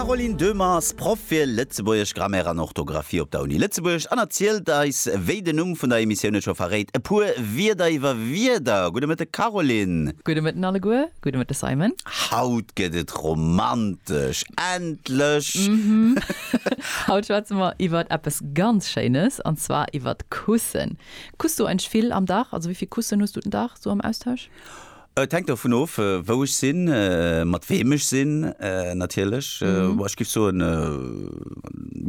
D'Caroline Döhmer ass Proff fir Lëtzebuergesch, Grammaire an Orthografie op der Uni Lëtzebuerg an erzielt eis, wéi den Numm vun der Emissioun et scho verréit, e puer Wierder iwwer Wierder. Gudde Mëtten, Caroline! Gudde Mëtten alleguer, gudde Mëtten, Simon! Haut gëtt et romantesch, endlech! Haut schwätze mer iwwer eppes ganz Schéines, an zwar iwwer Kussen. Kuss du eigentlech vill am Dag? Also wéi vill Kussen hues du den Dag esou am Austausch? Et hänkt dovun of, wou ech sinn, mat weem ech sinn natierlech. Mä ech géif soen,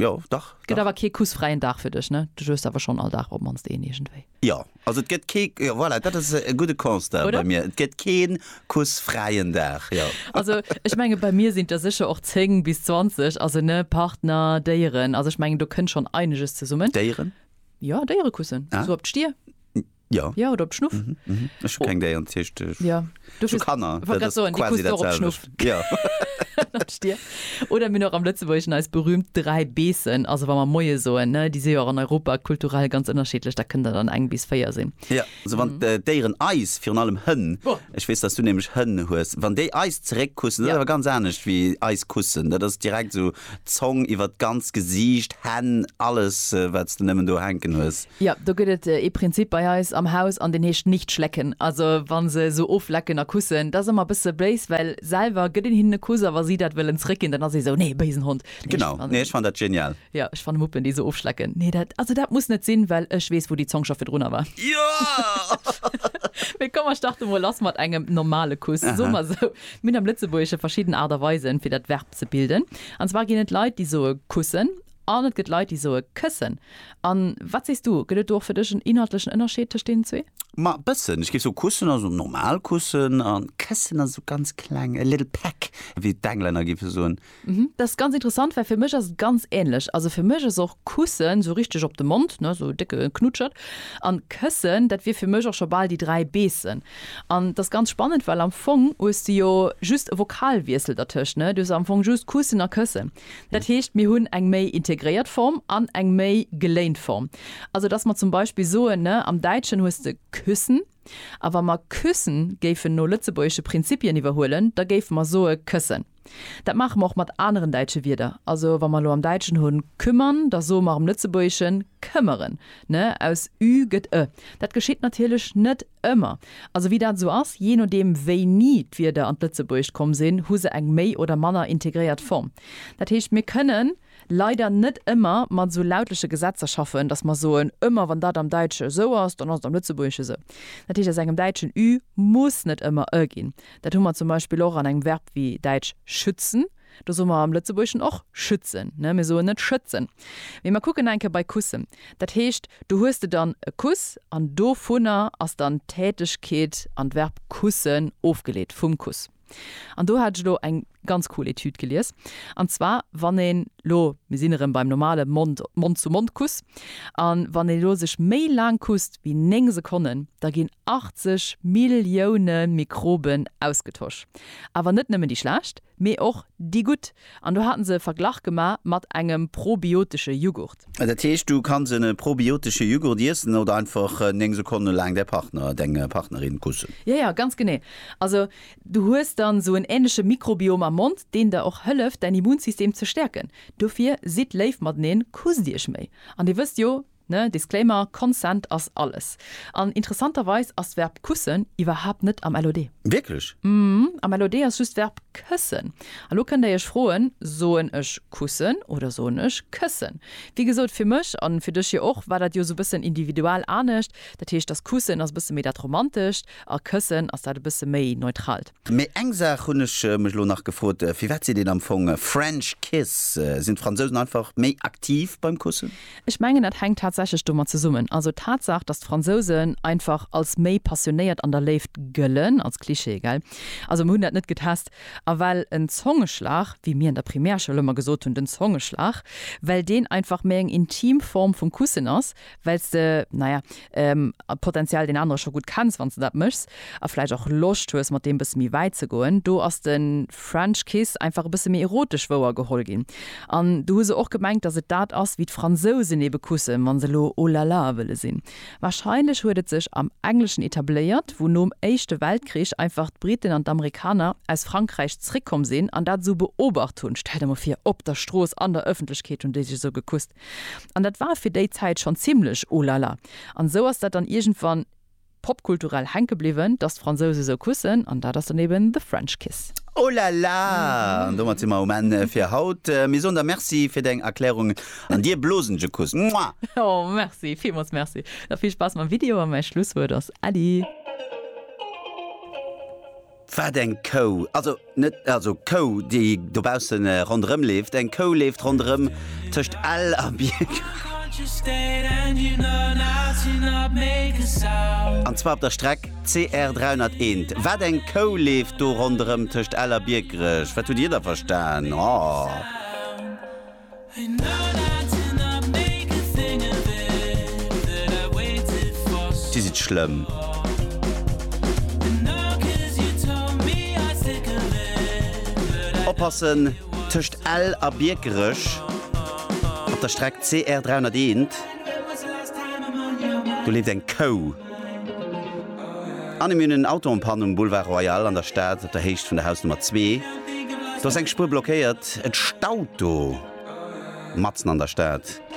jo, dach. Et gëtt awer kee kussfräien Dag fir dech, ne? Du juegst awer schonn all Dag op d'mannst een iergendwéi. Jo, also et gëtt kee, jo, voilà, dat ass e gudde Constat bei mir, et gëtt kee kussfräien Dag, jo. Also ech menge bei mir sinn der sécher och 10 bis 20, also, ne, Partner, Déieren, also ech mengen do kënnt schonn eineges zesummen. Déieren? Jo, Déierekussen, esou op d'Stier. Ja. Ja, oder op Schnuff. Mhm, mhm. Ech hu keng Déier an d'Kischt. Ech Ja, du hu Kanner. Wollt grad soen, déi quasi kucks du och op datselwecht. Schnuff. Ja. Natsch dir. Oder mir hunn och am Lëtzebuergeschen eis berühmt dräi Beessen, also wa mer Moie soen, ne, déi si jo och an Europa kulturell ganz ënnerschiddlech, da kënnt der dann eng bis véier sinn. Ja, also wann d' Déieren eis, virun allem Hënn, Boah. ech weess, dass du nämlech Hënn hues, wann déi eis zeréckkussen, dat ass Ja. awer ganz anescht wéi eis kussen. Dat ass direkt esou Zong iwwer d'ganzt Gesiicht, Hänn, alles wats de nemmen do hänken hues. Jo, do gëtt et ee Prinzip bei eis am Haus an deen heescht nicht schlecken. Also wa se esou oflecken a kussen, dat ass ëmmer e bësse béis, well selwer gëtt een hinnen e Kuss a wa si dat wëllen zréckginn, dann ass ee esou, nee, béisen Hond. Genau, nee ech fannen dat genial. Jo, ech fanne Muppen déi esou ofschlecken, nee dat, also dat muss net sinn, well ech weess wou déi Zong scho virdrunner war. Jo! Mee komm mer starte mol lass mat engem normale Kuss. Soe mer esou, mir hunn am Lëtzebuergesche verschidden Aart a Weisen fir dat Verb. ze bilden. An zwar ginn et Leit, déi soe kussen an et gëtt Leit, déi soe këssen. A wat sees du, gëtt et do och fir dech en inhaltlechen Ënnerscheed tëscht deenen zwee? Ma e bëssen. Ech géif soe kussen ass esou normal kussen a këssen ass esou ganz kleng, a little peck, wéi d'Englänner géife soen. Mhm, dat ass ganz interessant, well fir mech ass et ganz änlech. Also fir mech ass och kussen esou richteg op de Mond, ne, esou e décke Knutschert. An këssen, dat wier fir mech och scho bal déi dräi beessen. An d'ass ganz spannend, well am Fong hues de jo just e Vokalwiessel dertëscht, ne? Du hues am Fong just kussen a këssen. Dat heescht, mir hunn eng méi integréiert Form an eng méi geléint Form. Also dass mer zum Beispill soen, ne, am Däitschen hues de küssen, a wa mer küssen géifen no lëtzebuergesche Prinzipien iwwerhuelen, da géife mer soe këssen. Dat maache mer och mat aneren däitsche Wierder. Also wa mer elo am Däitschen hunn kümmern, da soe mer am Lëtzebuergeschen këmmeren, ne? Aus ü gëtt e. Dat geschitt natierlech net ëmmer. Also wéi dat esou ass, jee nodeem wéini d'Wierder an d'Lëtzebuergescht komm sinn, hu se eng méi oder manner integréiert Form. Dat heescht, mir kënnen. leider net ëmmer mat esou lautleche Gesetzer schaffen, dass mer soen, ëmmer wann dat am Däitsche esou ass, dann ass et am Lëtzebuergesche esou. Dat heescht, aus engem däitschen ü muss net ëmmer ë ginn. Dat hu mer zum Beispill och an engem Verb wéi däitsch schützen, do soe mer am Lëtzebuergeschen och schützen, mir soen net schëtzen. Mee mer kucken nach eng Kéier bei kussen. Dat heescht, do hues de dann e Kuss an dovunner ass dann d'Tätegkeet an d'Verb kussen ofgeleet, vum Kuss. An do hat ech elo eng ganz cool Etüd gelies. An zwar wann een elo, mir sinn erëm beim normale Mond, Mond-zu-Mond-Kuss, a wann een elo sech méi laang kusst wéi 9 Sekonnen, da ginn 80 Millioune Mikroben ausgetosch. Awer net nëmmen déi schlecht, mee och déi gutt. An do haten se e Verglach gema mat engem probiotesche Jughurt. Dat heescht, du kanns e probiotesche Jughurt iessen oder einfach 9 Sekonne laang däi Partner, deng Partnerin kussen. Jo, jo, ganz genee. Also, du hues dann esou en änleche Mikrobiom am Mond, deen der och hëlleft, däin Immunsystem ze stäerken. Dofir sidd léif mateneen, kusst iech méi. An dir wësst jo, Ne, Disclaimer, Consent ass alles. An interessanterweis ass d'Verb kussen iwwerhaapt net am LOD. Wierklech? Mhm, am LOD ass just d'Verb këssen. A lo kënnt Där Iech froen, Soen ech kussen oder soen ech këssen? Wéi gesot, fir mech, an fir dech jo och, war dat jo esou bëssen individual anescht. Dat heescht, dass kussen ass e bësse méi dat Romantescht a këssen ass dat e bësse méi Neutralt. Mee eng Saach hunn ech mech elo nach gefrot, Firwat seet een am Fong French Kiss? Sinn d'Fransousen einfach méi aktiv beim Kussen? Ech mengen dat hänkt tatsächlech domat zesummen. Also d'Tatsaach, datt d'Fransousen einfach als méi passionéiert an der Léift gëllen, als Klischee, gell? Also mer hunn dat net getest. A well en Zongeschlag, wéi mir an der Primärschoul ëmmer gesot hunn, den Zongeschlag, well deen einfach méi eng intim Form vum Kussen ass, well s de, naja, d'Potential deen anerer scho gutt kenns, wann s de dat méchs, a vläicht och Loscht hues mat deem bësse méi wäit ze goen. Do ass de French Kiss einfach e bësse méi erotesch wouer geholl ginn. An do hu se och gemengt, datt et dat ass, wéi d'Fransousen ebe kussen, wa se elo Oh la la wëlle sinn. Warscheinlech huet et sech am Engleschen etabléiert, wou nom Éischte Weltkrich einfach d'Briten an d'Amerikaner aus Frankräich zréckkomm sinn an dat esou beobacht hunn. Stell der emol vir, op der Strooss, an der Ëffentlechkeet hunn déi sech esou gekusst. An dat war fir déi Zäit schonn zimlech oh la la. An esou ass dat dann iergendwann popkulturell hänke bliwwen, dass d'Fransouse esou kussen. An dat ass dann eben The French Kiss. Oh la la! An domat si mer um Enn fir haut. Mir soen der Merci fir deng Erklärungen an dir blosen je Kuss. Mua! Oh merci, villmools merci. Da vill Spaass mam Video a mäi Schlusswuert ass Äddi! Wat eng Kou? Also net also d'Kou, déi dobausse ronderëm leeft. Eng Kou leeft ronderëm tëscht Ell a Bierg. An zwar op der Streck CR 301. Wat eng Kou leeft do ronderëm tëscht Ell a Biekerech? Wat hutt Dir da verstan? Oh. Dir sidd schlëmm. Oppassen, tëscht Ell a Biekerech op der Streck CR 301, do leeft eng Kou. Anne, Mir hunn en Auto en panne um Boulevard Royal an der Stad, op der Héicht vun der Hausnummer zwee. Do ass eng Spuer blockéiert. Et staut do matzen an der Stad.